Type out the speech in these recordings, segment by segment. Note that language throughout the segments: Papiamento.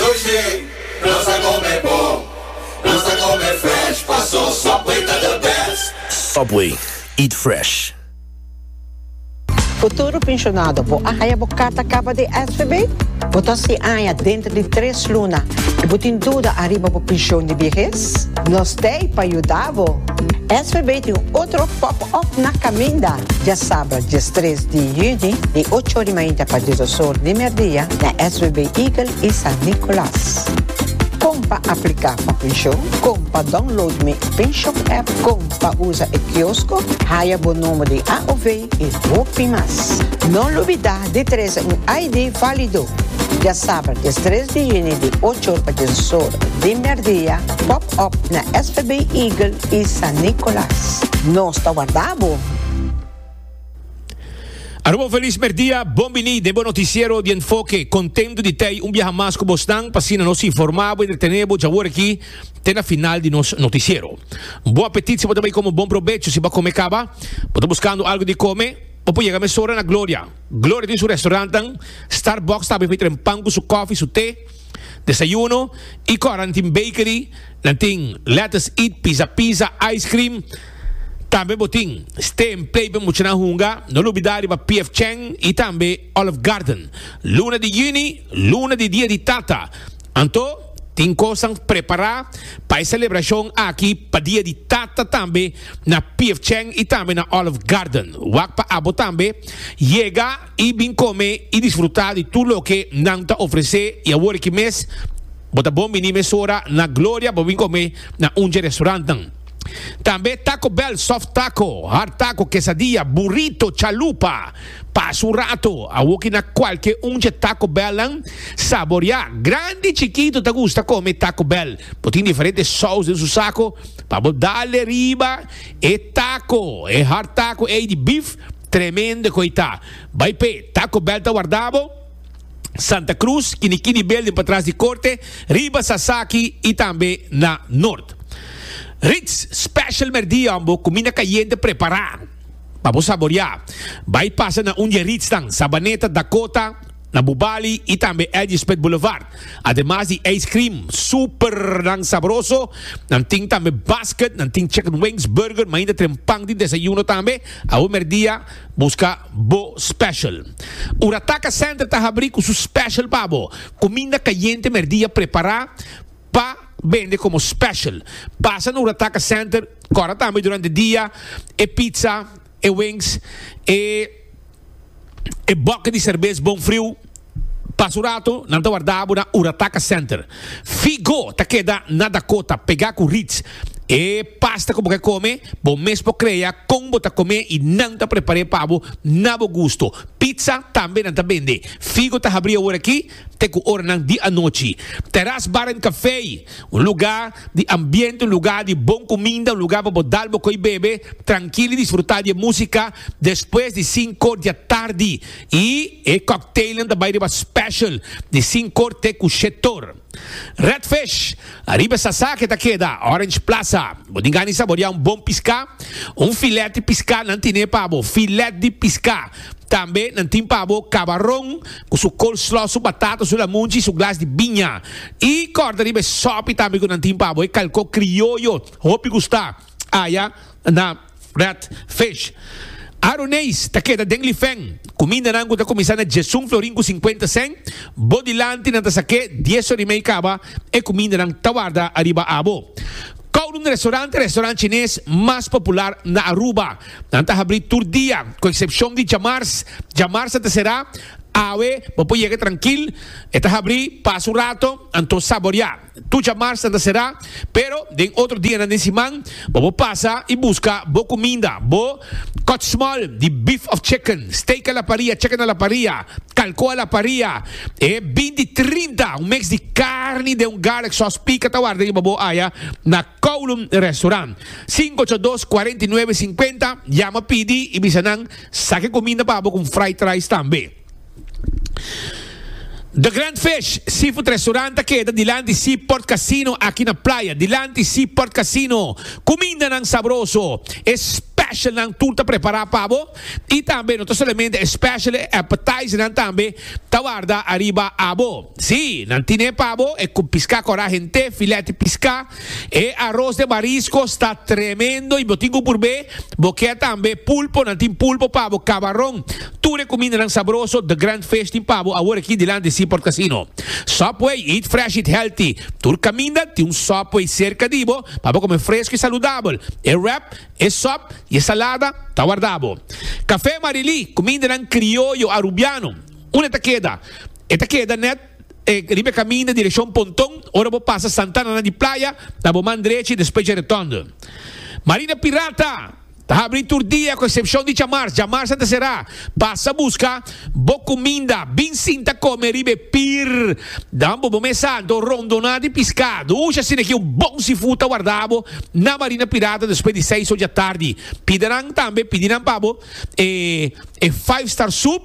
Touch me, nos ta come bon, nos ta come fresh, paso Subway ta the best. Subway, eat fresh. Futuro Pensionado, Bo a haya bo carta caba di SVB? Bo ta sin aña dentro di tres luna y bo tin duda ariba bo pension di viehes? Nos t'ey pa yuda bo! SVB tin un otro pop-up. Òf na kaminda, dje sabra, dje stres di yüni, di ocho ori mainta pa dje dos or di merdia, na SWB Eagle i San Nicolas. Kon pa apliká pa penshon, Kon pa download mi penshon app, Kon pa usa e kiosko, haya bo nomber di AOV i hopi mas. No lubidá di trese un ID válido! Dje sabra, dje stres di yüni, di ocho or pa dje dos or di merdia, pòp òp na SWB Eagle y San Nicolas. Nos ta warda bo! Aruba un feliz merdia, bon bini den bo noticiero di enfoke. Contento di tei un biaha mas cu bosnan, p'asina nos informa bo y entretene bo djawor aki te na final di nos noticiero. Bon apetit si bo ta bay come bon probecho si bo a come caba, bo ta buscando algo di come, bo por yega mesora na Gloria. Gloria tin su restaurantnan, Starbucks ta abri fey tren pan cu su coffee y su te. Desayuno y ku aran tin bakery, nan tin lettuce eat, pizza pizza, ice cream. Tambe bo tin stay and play pa muchanan hunga, no lubida riba PF Chang y tambe Olive Garden. Luna di Juni, luna di Dia di Tata, anto tin kosnan prepara pa e celebracion aki pa Dia di Tata tambe na PF Chang y tambe na Olive Garden. Wak pa abo tambe yega. i bin kome i disfrutá di tur loke nan ta ofresé i awor aki mes bo ta bon biní mesora na Gloria pa bin kome na un dje restaurantnan. Tambe Taco Bell, soft taco, hard taco, quesadilla, burrito, chalupa. Pasa un rato, awor ki na kualke un dje Taco Bellnan saboriá. Grandi i chikito ta gusta kome Taco Bell. Bo tin diferente sous den su sako pa bo dale riba e taco, e hard taco ei di bif, Tremendo ku ei ta. Bai p'e Taco Bell ta warda bo. Santa Cruz, kini kini building patras di korte, riba Sasaki i tambe na Nort. Ritz Special Merdion bo kumina kayente prepará pa bo saboreá. Bai pasa na un di e Ritznan, Sabaneta, Dakota, Na Bubali y tambe Edgespit Boulevard, ademas di ice cream supernan sabroso, nan tin tambe basket, nan tin chicken wings, burger, mainda tren pan di desayuno tambe. Awe merdia busca bo special. Urataka Center ta habri cu su special pa bo. Cuminda cayente merdia prepara pa bende como special. Pasa na Urataka Center, cora tambe durante dia e pizza, e wings, e e bòkke di serbes bon friu. Pas un rato nan ta warda bo na Urataka Center. Figo ta keda na Dakota, pegá ku Ritz. E pasta ku bo ke kome, bo mes por krea kon bo ta kom'é i nan ta prepar'é pa bo na bo gusto. Pizza tambe nan ta bende. Figo ta habrí awor aki. te ku oranan di anochi. Teras Bar en Café, un lugá di ambiente, un lugá di bon kuminda, un lugá pa bo dal bo koi bebe trankil i disfrutá di e músika despues di sinkor di atardi. I e kòkteilnan ta bai riba spèshèl di sinkor te ku shetor. Redfish. Ariba sasa ke ta keda Orange Plaza, bo tin gana di saboreá un bon piská, un filèt di piská nan tine pa bo, filèt di piská. Tambe nan tin pa bo kabaron ku su coleslaw, su batata, su lamunchi i su glas di biña. I kòrda riba e sòpi tambe ku nan tin pa bo, e kalkó krioyo, hopi gustá. Aya na Red Fish, Aroneis ta keda den lifen. Kumindanan ku ta kuminsá na djesun florin ku sinkuenta sèn, bo dilanti nan ta sak'é dies or i mei kaba e kumindanan ta warda ariba abo. Kowloon Restaurant ta restaurant chines mas popular na Aruba. Nan ta habrí tur dia, ku eksepshon di djamars. Djamars nan ta será. Awe bo por yega trankil, e ta habrí pas un rato, anto saboriá! Tucha marsnan ta será, pero den otro dianan den siman bo por pasa i buska bo cuminda, bo kòtsmòl di beef of chicken, steak a la paria, chicken a la paria, kalko a la paria, e binti trinta, un mix di carni den un garlic sauce pica ta warda riba bo aya na Kowloon Restaurant. Cinco ocho dos, cuarenta y nueve cincuenta, yama pidi i bisa nan sa ke cuminda pa bo con fried rice tambe. The Grand Fish Seafood Restaurant ta keda dilanti Seaport Casino aki na Playa. Dilanti Seaport Casino, kumindanan sabroso, e specialnan tur ta prepara pa bo i tambe no ta solamente e special, e appetizernan tambe ta warda ariba abo. Sí, nan tine pa bo e piská kòrá hent'é, filèt di piská, E aros de mariscos ta tremendo y bo tin cu purbe, bo kier tambe pulpo, nan tin pulpo pa bo, cabaron, tur e cumindanan sabroso, The Grand Fish tin pa bo awor aki dilanti di Seaport Casino. Subway, eat fresh, eat healthy, tur caminda tin un Subway cerca di bo pa bo come fresco y saludabel, e wrap, e sop y e salada ta warda bo. Café Marilí, cumindanan crioyo Arubiano, unde ta keda? E ta keda net. riba e kaminda direkshon Ponton, ora bo pasa Santa Ana di Playa, ta bo man drechi despues dje Retòndo. Marina Pirata ta habri tur dia ku esepshon di djamars, djamars a ta será. Pasa buska bo kuminda, bin sinta kome riba e pir, dan bo bo mesa anto rondoná di piskadu, uxa asina aki un bon seafood ta warda bo na Marina Pirata despues di seis oja tardi. Pidenan tambe, pidi nan pa bo. e e five star soup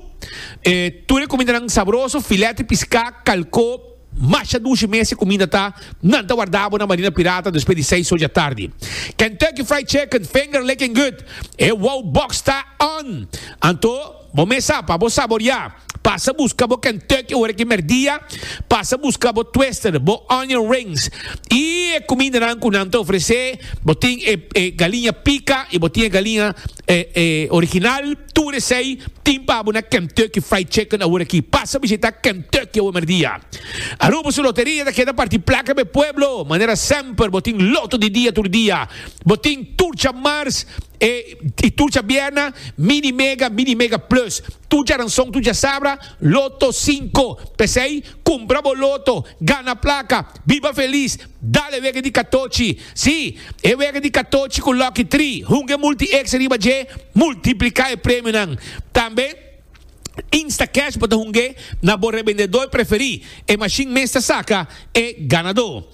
e tur e kumindanan sabroso, filèt di piská, kalkó, masha dushi mes e kuminda ta, nan ta wardá bo na Marina Pirata despues di seis oja tardi. Kentucky Fried Chicken, finger licking good, e wow box ta on! Anto bo mesa pa bo saboriá, pasa buska bo Kentucky ora ki merdia, pasa buska bo twister, bo onion rings i e kumindanan ku nan ta ofresé, bo tin e e galiña pika i bo tin e galiña E original tur esey tin pa abo na Kentucky Fried Chicken awor aki. Pasa bishita Kentucky awe merdia. Aruba su loteria ta keda parti placa pa e pueblo. Manera semper bo tin loto di dia tur dia. Bo tin tur dja mars e y tur dja bierna Mini Mega, Mini Mega Plus. Tur dja ranson, tur dja sabra Loto Cinco. Pesey cumpra bo loto, gana placa, biba feliz. Dale wega di katochi. Sí, e wega di katochi ku Lucky Tri. Hunga e multi extra riba dje, multipliká e premionan. Tambe Instacash bo ta hunga na bo rebendedó preferí. E mashin mes ta saka e ganadó.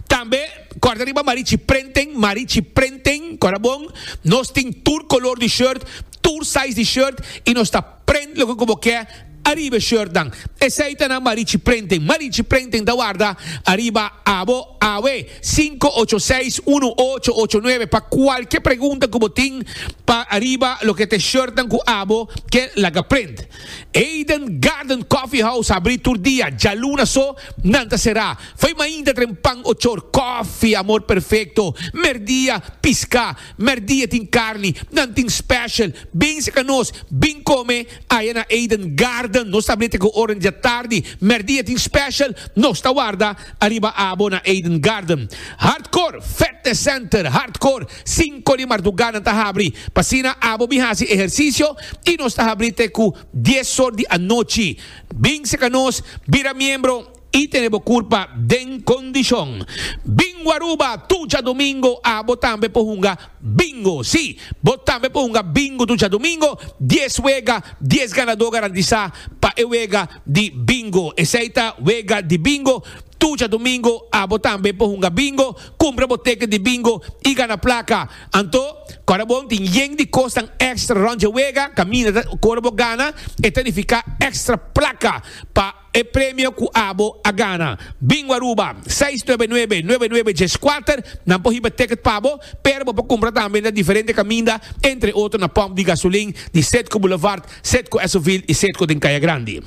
Tambe kòrda riba Marichi Prenten, Marichi Prenten, kòrda bon. Nos tin tur kolor di shirt, tur size di shirt i nos ta. Prent loke ku bo ke ariba e shortnan. Esei ta na Marichi Printing. Marichi Printing ta warda ariba abo awe. Sinku ocho seis unu ocho ocho nuebe pa kualke pregunta ku bo tin pa ariba loke ta e shortnan ku abo ke laga print. Eden Garden Coffee House ta abri tur dia, djaluna so nan ta será. Foi mainta tren pan ochor, koffie, amor perfekto, merdia, piská. Merdi e tin carni, nan tin special. Bin seca nos, bin come aya na Eden Garden. Nos ta blete cu ora dja tardi. Merdi e tin special, nos ta warda ariba abo na Eden Garden. Hardcore Fitness Center, Hardcore, cinco di marduga nan ta habri. P'asina abo bin haci ehercicio y nos ta habri te cu dies or di anochi. Bin seca nos, bira miembro. I tene bo curpa den condicion. Bingo Aruba, tu djadomingo a bo tambe por hunga Bingo. Si, bo tambe por hunga Bingo tu djadomingo, dies wega, dies ganador garantisa pa e wega di Bingo. Esey ta wega di Bingo, tu djadomingo a bo tambe por hunga Bingo, cumpra bo teken di Bingo y gana placa. Anto, ora bon tin yen di cosnan extra rond dje wega, caminda ta cor bo gana, e ta nifica extra placa pa. E premio cu abo a gana. Bingo Aruba, seis nuebe nuebe, nuebe nuebe dies kuater, nan por hiba ticket pa bo, pero bo por cumpra tambe na diferente caminda, entre otro na pump di gasolin di Cedco Boulevard, Cedco Esoville y Cedco den Caya Grandi.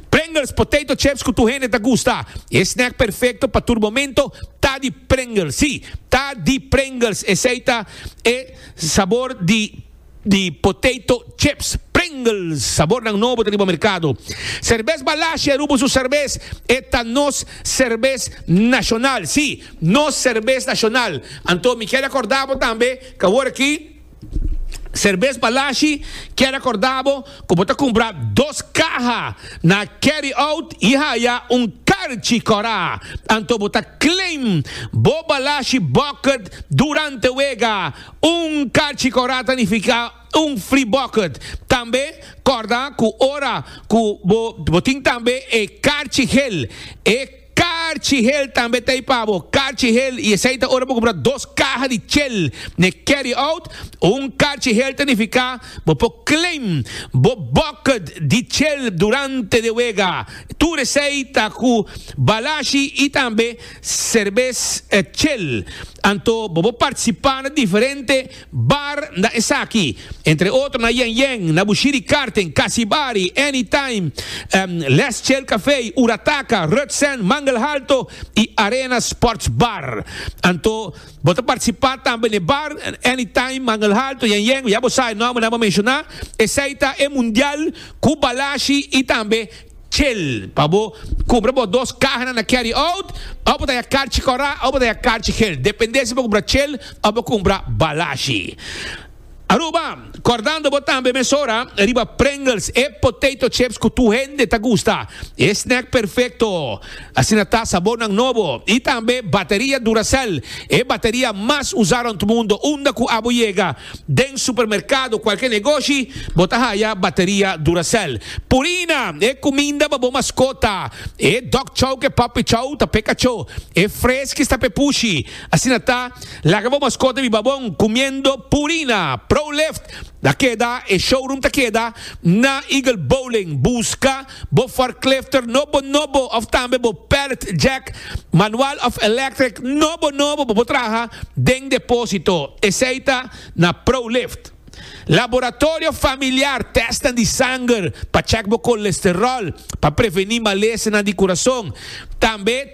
Pringles, potato chips cu tur hende ta gusta. E snack perfecto pa tur momento ta di Pringles. Sí, ta di Pringles, esey ta e sabor di. di potato chips Pringles sabornan nobo ta riba merkado. Serbes Balasje Rubo su serbes e ta nos serbes nashonal, si, nos serbes nashonal. Anto mi kier akorda bo tambe ku awor aki Serbes Balasje kier akorda bo ku bo ta kumpra dos kaha na Carry Out i haya un karchi kòrá. Anto bo ta claim bo Balasje Bucket durante wega. Un kachi kòrda ta nifiká un fri bòkert. Tambe kòrda ku ora ku bo bo tin tambe e karchi hel, e karchi hel tambe ta ei pa bo, karchi hel i esei ta ora bo kumpra dos kaha di chel n'e carry-out. Un karchi hel ta nifiká bo por claim bo bòkert di chel durante de wega. Tur esei ta ku balashi i tambe. Serbes e chel. Anto bo por participa na diferente bar na esaki. Entre otro na Yen Yen, na Bushiri Karten, Kasibari, Anytime, Les Chel Cafe, Urataka, Rutsen, Mangel Halto y Arena Sports Bar. Anto bo ta participa tambe n'e bar, Anytime, Mangel Halto, Yen Yen, ya bo sabe nomber nan bo menciona. Esey ta e Mundial cu Balashi y tambe. Chel pa bo cumpra bo dos cahanan na carry out of bo ta ya carchi cora of bo ta ya carchi gel depende si bo cumpra chel of bo cumpra balashi. Aruba, cordando bo tambe mesora riba Pringles e potato chips cu tur hende ta gusta e snack perfecto. Asina ta sabónan nobo i tambe bateria Duracell, e bateria mas usá rònt mundu. Unda ku abo yega, den supermerkado, kualke negoshi, bo ta haya bateria Duracell. Purina, e kuminda pa bo maskota, e dog chow ku e puppy chow ta p'e kachó, e Friskies ta p'e pushi. Asina ta, laga bo maskota biba bon kumiendo Purina. Pro Lift ta keda, e showroom ta keda na Eagle Bowling. Buska. Bo forklifter no bo nobo of tambe bo pallet jack manual of electric no bo nobo bo por traha den deposito, esey ta na Prolift. Laboratorio familiar tesnan di sanger pa check bo kolesterol pa preveni malesenan di kurason, tambe.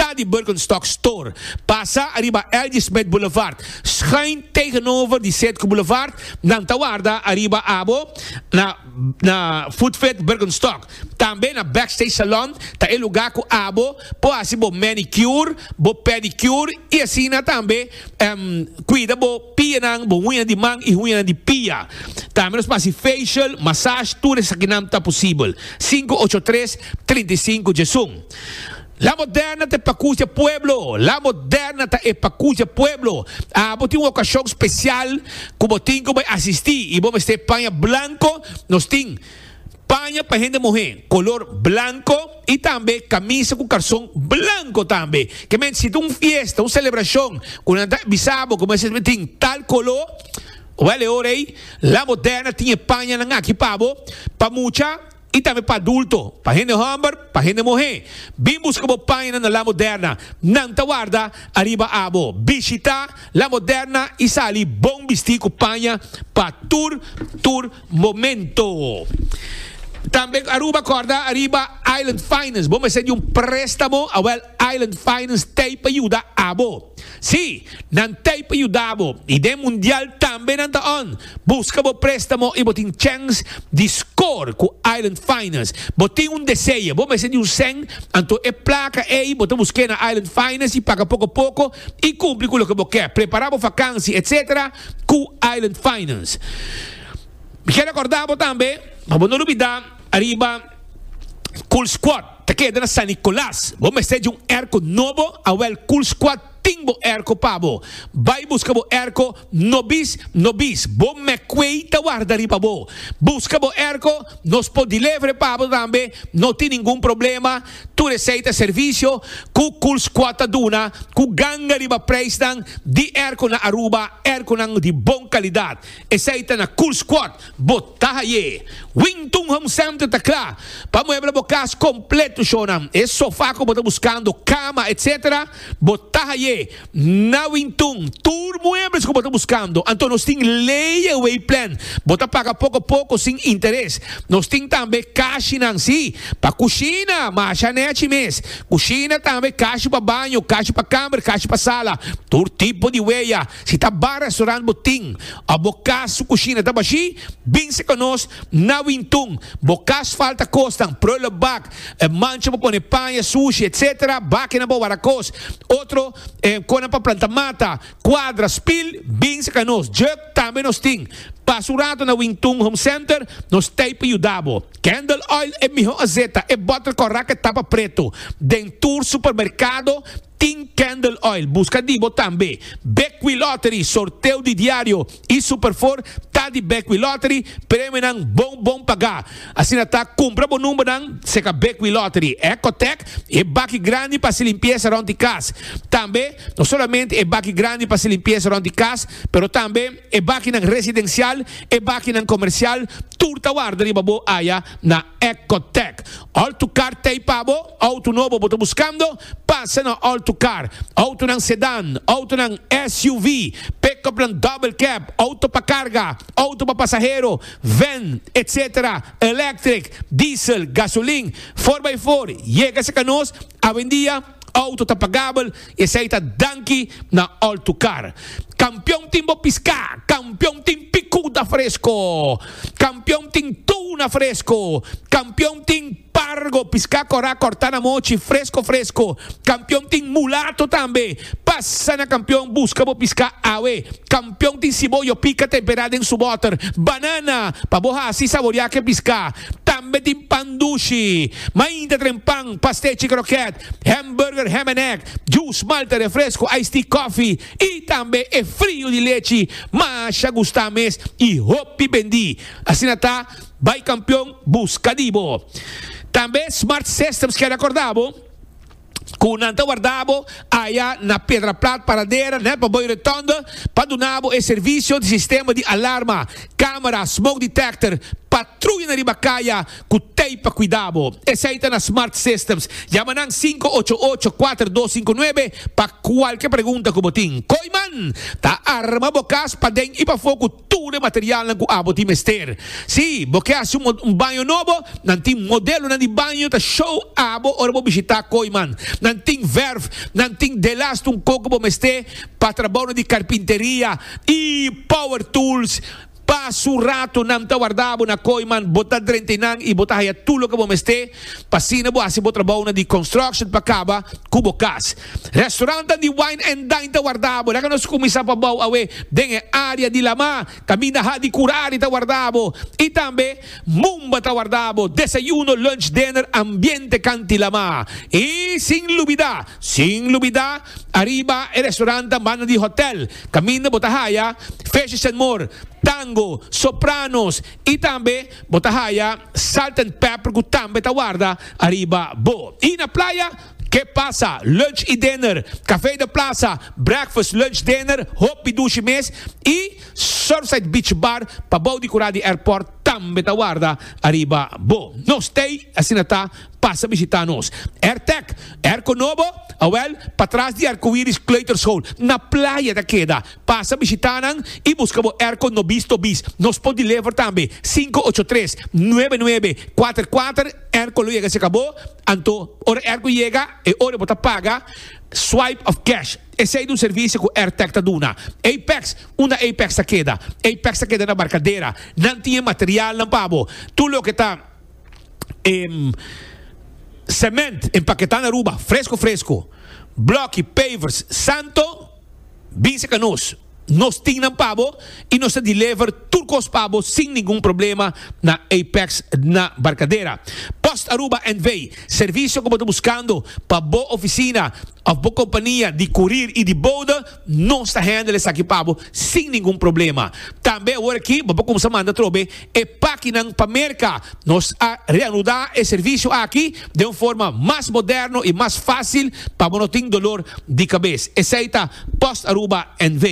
Ta di Birkenstock Store, pasa ariba L.J. Smith Boulevard, schuin tegenover di Setco Boulevard, nan ta warda ariba abo na na Footfit Birkenstock. Tambe na Backstage Salon ta e luga ku abo por hasi bo manicure, bo pedicure i asina tambe kuida bo pianan, bo huñanan di man i huñanan di pia. Tambe nos por hasi facial, massage, tur esakinan ta posibel. Sinku ocho tres, trinta i sinku Djezun. La moderna ta e pacucia pueblo, la moderna ta e pacucia pueblo. Ah, bo tin un ocasion special cu bo tin cu bo e asisti y bo mester paña blanco, nos tin paña pa hende muhe color blanco y tambe camisa cu carson blanco tambe. Ke mente si ta un fiesta, un celebracion cu nan ta bisa bo cu bo mester tin tal colo, wel e ora ey la moderna tin e pañanan aki pa bo pa mucha. i tambe pa adulto, pa hende homber, pa hende muhé. Bin buska bo paina na La Moderna, nan ta warda ariba abo. Bishitá La Moderna i sali bon bistí ku paña pa tur tur momento. Tambe Aruba kòrda ariba Island Finance, bo mester di un préstamo, awèl Island Finance t'ei pa yuda abo. Sí, nan t'ei pa yuda bo i den mundial tambe nan ta on. Buska bo préstamo i bo tin chèns di skor ku Island Finance. Bo tin un deseo, bo mester di un sèn, anto e plaka ei bo ta busk'é na Island Finance i paga poko poko i kumpli ku loke bo ke, prepará bo fakansi etc. Ku Island Finance. Mi ke rekordá bo tambe pa bo no lubidá ariba Cool Squad. Ta keda na San Nicolas. Bo mester dje un erko nobo, awel Cool Squad tin bo erko pa bo. Bai buska bo erko no bis, no bis, bo Meckway ta warda riba bo. Buska bo erko, nos por delevere pa bo tambe, no tin ningun problema, tur esei ta servisio ku Cool Squad ta duna ku ganga riba preisnan di erko na Aruba, erkonan di bon kalidat. Esei ta na Cool Squad, bo ta haye. Wington Home Center ta kla pa muebla bo kas kompleto shonan. E sofa ku bo ta buskando, kama, etc. Bo ta haye na Wington. Tur muebles ku bo ta buskando. Anto nos tin layaway plan. Bo ta paga poko poko sin interes. Nos tin tambe kashinan, si, pa kushina, masha nechi mes. Kushina tambe, kashi pa baño, kashi pa kamer, kashi pa sala. Tur tipo di weya. Si ta bar restaurant bo tin of bo cas su cushina ta bashi, binse cu nos na Wintun. Bo cas falta cosnan, prullenbak, mancha pa pone paña, sushi, etc. Bakinan pa wara cos. Otro conan pa planta mata, cuadra, spil, binse cu nos. Jug tambe nos tin. Pasa un rato na Wintun Home Center, nos t'ey pa yuda bo. Candle oil e miho azeta, e bottle correct e tapa preto. Den tur supermercado. Tin Candle Oil buska di bo tambe. Bekwee Lottery, sorteo di diario y Superfour ta di Bekwee Lottery, premionan bon bon paga. Asina ta, cumpra bo numbernan seca Bekwee Lottery, Ecotec, e baki grandi pa haci limpieza rond di cas. Tambe, no solamente e baki grandi pa haci limpieza rond di cas, pero tambe e bakinan residencial, e bakinan comercial, tur ta warda riba bo aya na. Ecotec, Auto Car t'ei pa bo? Auto nobo bo ta buscando? Pasa na Auto Car, autonan sedán, autonan SUV, pick-upnan double cab, auto pa carga, auto pa pasahero, van, etc. Electric, diesel, gasolin, for by for, yega sa ca nos awendia. Auto ta pagabel y esey ta danki na Altucar. Campeon tin bo pisca, campeon tin picuda fresco, campeon tin tuna fresco, campeon tin pargo, pisca cora corta na mochi, fresco fresco, campeon tin mulato tambe. Pasa na Campeon busca bo pisca awe. Pion tin siboyo pika temperá den su bòter. Banana pa bo hasi saboriá ku e piská. Tambe tin pan dushi. Mainta tren pan, pastechi krokèt, hèmburger, hèm en èg, jus, malta, refresku, ice tea, kòfi i tambe e friu di lechi masha gustá mes i hopi bendí. Asina ta, bai kampion buska di bo. Tambe Smart Systems kèn akordá bo. ku nan ta warda bo aya na Pedra Plat Paradera nel Paboy Retonde pa duna bo e servisio di sistema di alarma, kamera, smoke detector, patruyanan riba kaya ku tei pa kuida bo. Esei ta na Smart Systems. Yama nan sinku ocho ocho kuater dos sinku nuebe pa kualke pregunta ku bo tin. Koiman ta arma bo kas paden i pafó ku. tur e materialnan ku abo tin mester. Si bo ke hasi un baño nobo, nan tin modelonan di baño ta show abo ora bo bishitá Kooiman. Nan tin verf, nan tin delast un koko bo mester pa trabounan di karpinteria i power tools. Pa su rato nan ta warda abo na Kooiman, bo ta drenta einan i bo ta haya tur loke bo mester pa asina bo hasi bo trabounan di construction pa kaba ku bo kas. Restaurantan di Wine and Dine ta wardabo. Laga nos kuminsá pa bou awe den e área di Lamá. Kaminda ha di Kurari ta wardabo i tambe Mumba ta wardabo. Desayuno, lunch, dinner, ambiente kanti Lamá. I sin lubidá, sin lubidá, ariba e restaurantan banda di hòtèl kaminda bo ta haya Fishes and More, Tango, Sopranos i tambe bo ta haya Salt and Pepper ku tambe ta warda ariba bo. I na playa. Ke pasa, lunch i dinner, Café de Plaza, breakfast, lunch, dinner, hopi dushi mes i Surfside Beach Bar pa bou di kura di airport tambe ta warda ariba bo. No stay, asina ta, pasa bishita nos. Airtec, Airco Nobo, awel, patras di Arcoiris Kleuterschool, na playa ta keda. Pasa bishita nan i buska bo airco no bis to bis. Nos por deliver tambe, sinku ocho tres, nuebe nuebe, kuater kuater, airco lo yega cerca bo. Anto, ora airco yega, e ora bo ta paga Swipe of Cash. Esey ta un servicio cu Airtech ta duna. Apex, Unda Apex ta keda? Apex ta keda na Barcadera. Nan tin e materialnan pa bo. Tur loke ta cement empaketá na Aruba, fresco fresco. Bloki, pavers, Santo. Bisa ka nos, nos tin nan pa bo i nos ta deliver tur kos pa bo sin ningun problema na Apex na Barcadera. Post Aruba NV. Servisio ku bo ta buskando pa bo ofisina òf bo kompania di kurir i di bouda, nos ta handle esaki pa bo sin ningun problema. Tambe awor aki bo por kumsa manda trobe e pakinan pa Merka. Nos a reanudá e servisio aki den un forma mas moderno i mas fásil pa bo no tin dolor di kabes. Esei ta Post Aruba NV.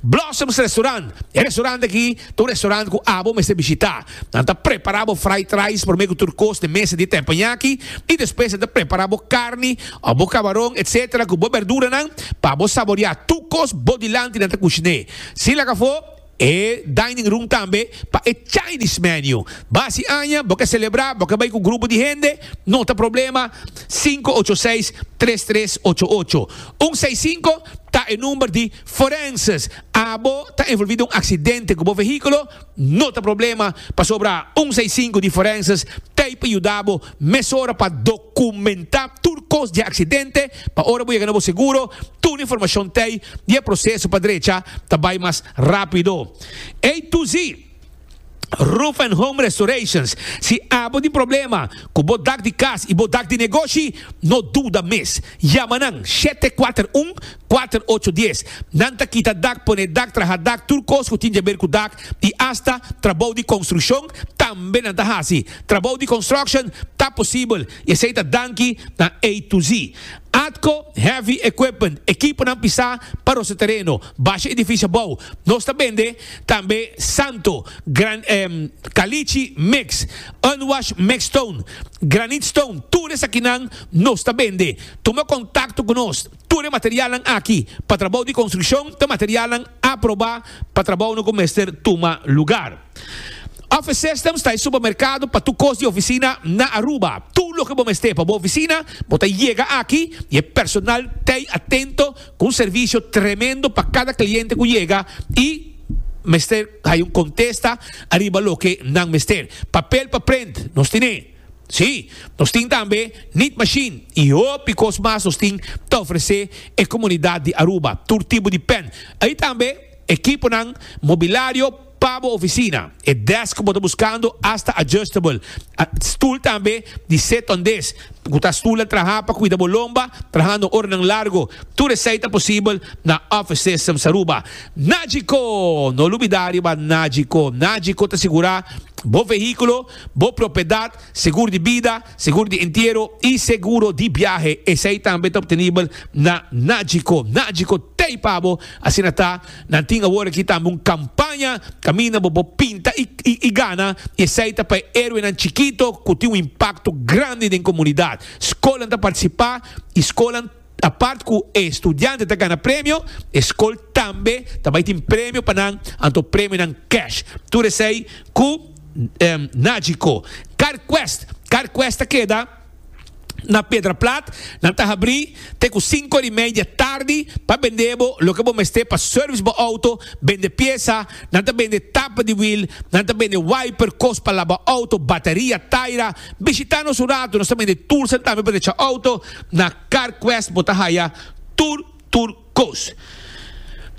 Blossoms Restaurant, E restaurant aki ta un restaurant ku abo mester bishitá. Nan ta prepará bo fried rice promé ku tur kos den mesa di tempoñaki i despues nan ta prepará bo karni òf bo kabaron etc. Ku bo berduranan pa bo saboreá tur kos bo dilanti nan ta kushiné. Sin laga afó. E dining room tambe pa e Chinese menu. Ba si aña bo ke celebra, bo ke bay cu grupo di hende, no ta problema, sinku ocho seis, tres tres ocho ocho. Un seis sinku ta e number di forenses. Abo ta envolvi den un accidente cu bo vehiculo, no ta problema, pasobra un seis sinku di forenses ta ey pa yuda bo Mesora pa dokumentá tur kos di e aksidente pa ora bo yega na bo seguro tur informashon ta ei i e proseso pa drecha ta bai mas rápido. A to Z Roof and Home Restorations, Si abo tin problema ku bo dak di kas i bo dak di negoshi, no duda mes. Yama nan shete kuater un, kuater ocho dies. Nan ta kita dak, pone dak, traha dak, tur kos ku tin djaber ku dak i asta trabou di konstrukshon tambe nan ta hasi. Trabou di construction ta posibel y esey ta danki na A to Z. Atco Heavy Equipment, ekiponan pisá pa rosa tereno, basha edificio abou, nos ta bende tambe Santo, gran Caliche mix, Unwash mix stone, Granite stone, tur esakinan nos ta bende. Tuma contacto cu nos, tur e materialnan aki pa trabou di construccion ta materialnan aprobá pa trabounan cu mester tuma lugar. Office Systems ta e supermerkado pa tur kos di ofisina na Aruba. Tur loke bo mester pa bo ofisina, bo ta yega aki i e personal ta ei atento ku un servisio tremendo pa kada kliente ku yega i mester haya un kontesta ariba loke nan mester. Papel pa prent, nos tin e. Sí, nos tin tambe Knead Machine i hopi kos mas nos tin ta ofresé e komunidat di Aruba. Tur tipo di pen. Ei tambe ekiponan, mobilario, Pa bo oficina, e desk cu bo ta buscando asta adjustable stoel tambe di sit-on desk, cu ta stoel na traha pa cuida bo lomba trahando oranan largo. Tur esai ta posibel na Office Systems Aruba. Nagico! No lubida riba Nagico. Nagico ta sigura bo vehiculo, bo propiedad, segur di bida, Segur di entiero y seguro di biahe esey tambe ta obtenibel na Nagico. Nagico tey pa bo. Asina ta, nan tin awor aki tambe un campaña caminda bo bo pinta y gana y esey ta pa e heroenan chikito cu tin un impacto grandi den comunidad. Scolan ta participa y scolan. Apart cu e studianten ta gana premio, e scol tambe ta bay tin premio pa nan, anto premionan cash. Tur esey cu Nagico. Carquest, Carquest ta keda na Pedraplat, nan ta habri te cu cinco ori media tardi pa bende bo loke bo mester pa service bo auto, bende pieza, nan ta bende tapa di wiel, nan ta bende wiper, cos pa laba auto, bateria, taira. Bishita nos un rato, nos ta bende tools tambe pa recha auto. Na CarQuest bo ta haya tur tur kos.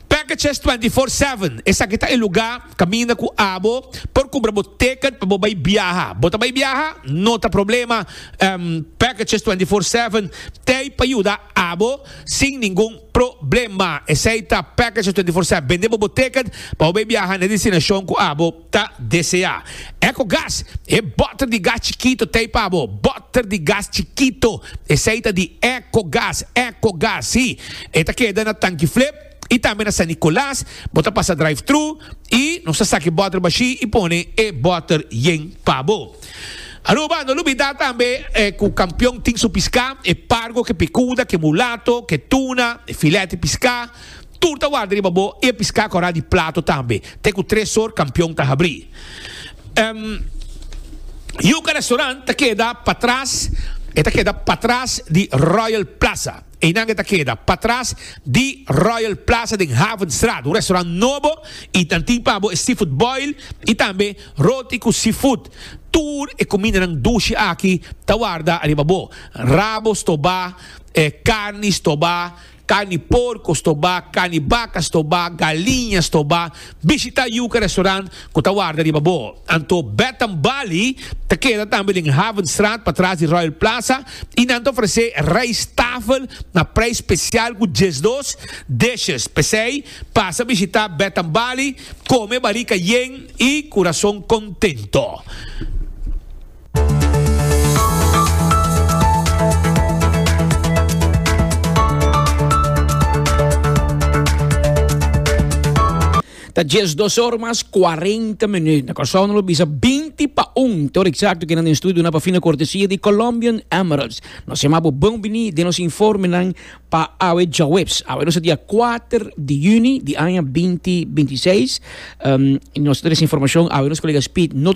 Packages twenty four seven, esaki ta e lugá kaminda ku abo por kumpra bo teket pa bo bai biaha. Bo ta bai biaha? No ta problema, Packages twenty four seven t'ei pa yuda abo sin ningun problema. Esei ta Packages twenty four seven, bende bo bo teket pa bo bai biaha na e destinashon ku abo. ta deseá. Ecogas, E bòter di gas chikito t'ei pa bo. Bòter di gas chikito, esei ta di Ecogas. Ecogas, sí, e ta keda na Tankiflip i tambe na San Nicolas. Bo ta pasa drive-thru i nos ta saka e bòter bashí i pone e bòter yen pa bo. Aruba, no lubidá tambe ku Kampion tin su piská, e pargo, ke pikuda, ke mulato, ke tuna, e filèt di piská. Tur ta warda riba bo e piská kòrá di plato tambe, te ku tres sor kampion ta habrí. Yuka Restaurant ta keda patras, e ta keda patras di Royal Plaza. Einan e ta keda patras di Royal Plaza den Havenstraat. Un restaurant nobo i nan tin pa bo e seafood boil i tambe roti ku seafood. Tur e kumindanan dushi aki ta warda riba bo, rabo stobá, karni stobá. Carni porco sto ba, carni baca sto ba, galiña sto ba. Bishita Yuca Restaurant cu ta warda riba bo. Anto Bed and Bali ta keda tambe den Havenstraat patras di Royal Plaza y nan ta ofrece rijsttafel na prijs special cu diesdos dishes. P'esey pasa bishita Bed and Bali, come barica yen y curason contento. Ta djes dos or mas cuarenta minuut. Na Curaçao nan lo bisa binti pa un. Te hora exacto kinan den studio nan pa fina cortesia di Colombian Emeralds. Nos yama bo bon bini den nos informenan pa awe djaweps. Awe nos a dia kuater di juni di aña binti binti seis. Nos ta trece informacion awe nos colega Speed no ta.